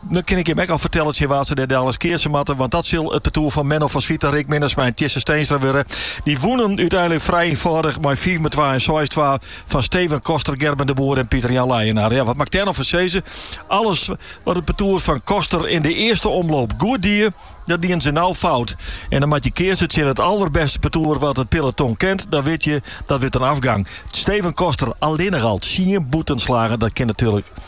Dan kin ik jim ek al fertelle tsjin wa't se dêr daliks keatse moatte, want dat sil it partoer fan Menno van Zwieten, Rick Minnesma en Tjisse Steenstra wurde. Dy woenen úteinlik frij ynfâldich mei fiif om twa en seis twa fan Steven Koster, Gerben de Boer en Pieter-Jan Leijenaar. Ja, wat moat ik dêr no fan sizze? Alles wat it partoer fan Koster yn de earste omloop goed die, dat dienen se no fout. En dan moat je keatse tsjin it allerbêste partoer wat it peloton kent, dan wit je dat wurdt in afgang. Steven Koster allinnich al tsien bûtenslaggen, dat kin natuerlik.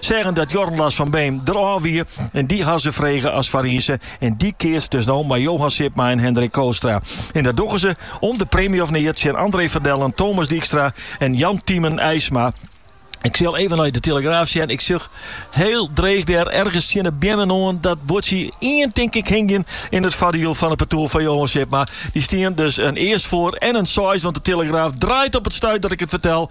Zeggen dat Jorn Lars van Beem der ôf wie en dy ha se frege as Farize en dy keatst dus no mei Johan Sipma en Hendrik Kootstra. En dat dogge se om de preemje of neat tsjin André van Dellen, Thomas Dijkstra en Jan Tymen Eisma. Ik sil even nei de telegraaf sjen. Ik sjoch heel dreech der ergens tsjin de beammen oan dat boerdsje ien tink ik hingjen in it foardiel fan it partoer van Johan Sipma. Dy stean dus ien earst foar en ien seis, want de telegraaf draait op it stuit dat ik it fertel.